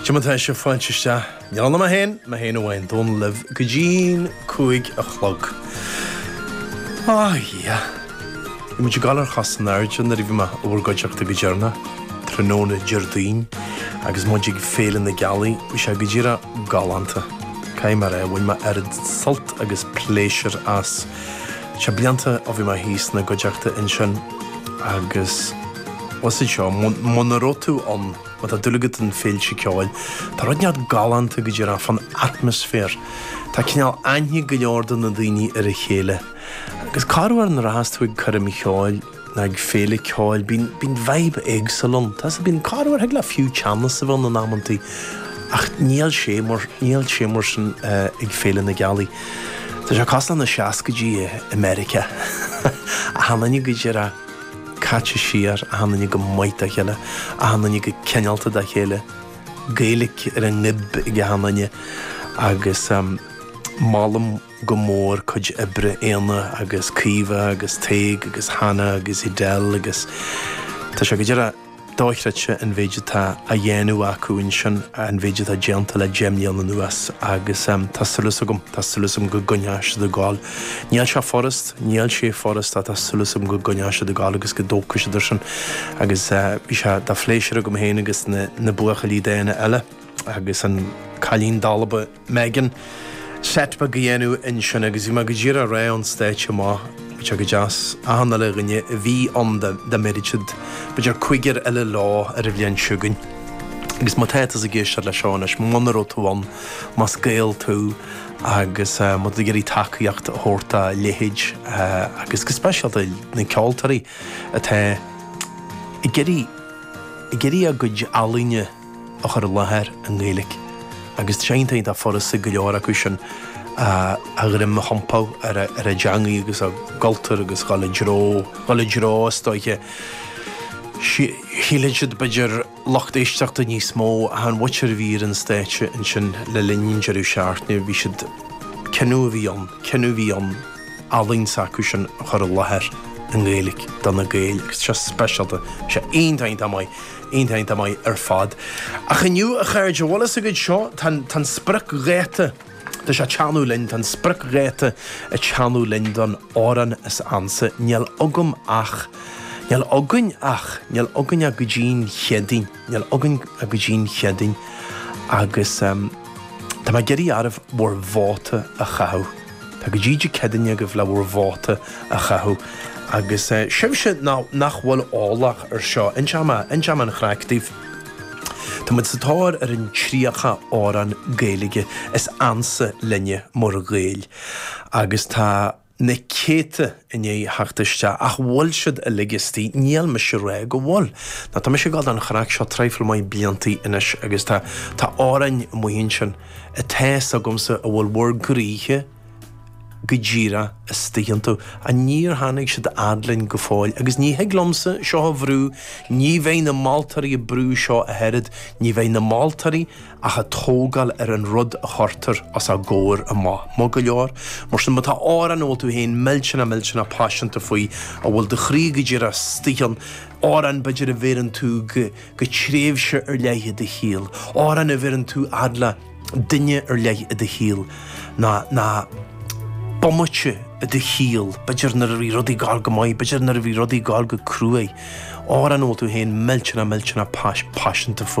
Dia daoibh, tá fáilte isteach, níl ann ach mé féin, mé féin amháin, Dónall libh go dtí'n cúig a chlog. Á, a Dhia! Bhí muid ag dul ar chos in airde nuair a bhí mé i bhur gcuideachta go deireanach, tráthnóna Déardaoin agus muid ag Féile na Gealaí, bhí sé go díreach galánta. Caithfidh mé a rá, bhain mé oiread sult agus pléisiúr as. Tá blianta ó bhí mé thíos ina gcuideachta ansin agus usaid seo, muna raibh tú ann, má tá dúil agat i bhféilte ceoil, tá rud inteacht galánta go díreach fán atmaisféar. Tá cineál aithne ag go leor de na daoine ar a chéile. Agus corruair nuair a bíos tú ag coirm cheoil? Nó ag féile ceoil bíonn vibe éagsúil ann. Tá's agat bíonn corruair thig le fiú teannas a bheith ann in amanntaí ach níl sé mar sin ag Féile na Gealaí. Tá sé cosúil leis na seascaidí i Meiriceá. Achan duine go díreach caite siar, achan duine go maith dá chéile, achan duine go cineálta dá chéile, Gaeilic ar a ngoib ag achan duine agus molaim, go mór cuid oibre Éanna agus Caoimhe agus Tadhg agus Hannah agus Edel agus tá sé go díreach dochreidte an mhéid atá á dhéanamh acu ansin, an mhéid atá déanta le deich mbliana anuas agus tá súil agam, tá súil agam go gcoinneoidh siad ag gabháil. Níl sé furast, níl sé furast ach tá súil agam go gcoinneoidh siad ag gabháil agus go dtógfaidh siad ar sin agus bhí sé de phléisiúr agam féin agus na buachaillí dána eile agus an cailín dalba Megan, Setback a dhéanamh ansin agus bhí mé go díreach ag ráit ón stáitse amach bheadh sé go deas achan uile dhuine a bhí ann dá mbéarfadh siad b'fhéidir cúigear eile leo ar an bhliain seo chugainn agus má tá tusa ag éisteacht le seo anois muna raibh tú ann más Gael tú agus má tá tú ag iarraidh tacaíocht a thabhairt dá leithéid agus go speisialta na ceoltóirí atá ag iarraidh ag iarraidh a gcuid ealaíne a a chur i láthair i nGaeilge agus tá sé iontach iontach furasta go leor acu sin a ndroim a thiompú ar a ar a dteangaidh agus a gcultúr agus dhul i dtreo dhul i dtreo is dóiche go shíleann siad b'fhéidir lucht éisteachta níos mó achan bhoc a bhí ar an stáitse ansin le linn an deireadh seachtaine bhí siad cinneadh a bhí ann cinneadh a bhí ann ealaín s'acu sin a chur i láthair i nGaeilge do na Gaeil agus tá sé speisialta tá sé iontach iontach maith. Iontach maith ar fad. Ach inniu, a chairde, bhfuil fhios agaibh seo, tá an spriocdháta, tá sé ag teannadh linn, tá an spriocdháta ag teannadh linn don Amhrán is Ansa. Níl agam ach. níl againn ach. níl againn ach go dtí an Chéadaoin. níl againn ach go dtí an Chéadaoin. Agus tá mé ag iarraidh oraibh bhur vóta a chaitheamh. Tá go dtí Dé Céadaoin agaibh le bhur vóta a chaitheamh. Agus sibhse nach bhfuil eolach ar seo, inseam an chraic daoibh. Tá muid sa tóir ar an 30 amhrán Gaeilge is ansa linne mar Ghaeil. Agus tá na céadta i ndiaidh theacht isteach. Ach bhfuil siad uilig istigh? Níl mise ag rá go bhfuil. Ná tá mise ag dul don chraic seo trifle maith blianta anois agus tá amhráin amuigh ansin. a fhios agamsa a bhfuil bhur gcroíthe go díreach istoigh iontu. Ach níor tháinig siad fhad linn go fóill? Agus ní thig liomsa seo a bhrú, ní bheidh na moltóirí ag brú seo ach oiread, ní bheidh na moltóirí ach ag tógáil ar an rud a chuirtear os a gcomhair amach, maith go leor. Mar sin, má tá amhrán a bhfuil tú féin millteanach millteanach paiseanta faoi, a bhfuil do chroí go díreach istoigh ann, amhrán b'fhéidir a bheireann tú go. go tréimhse ar leith i do shaol, amhrán a bheireann tú fhad le duine ar leith i do shaol, nó nó bomaite i do shaol, b'fhéidir nuair a bhí rudaí ag goil go maith, b'fhéidir nuair a bhí rudaí ag goil go cruaidh, amhrán a bhfuil tú féin millteanach millteanach paiseanta faoi.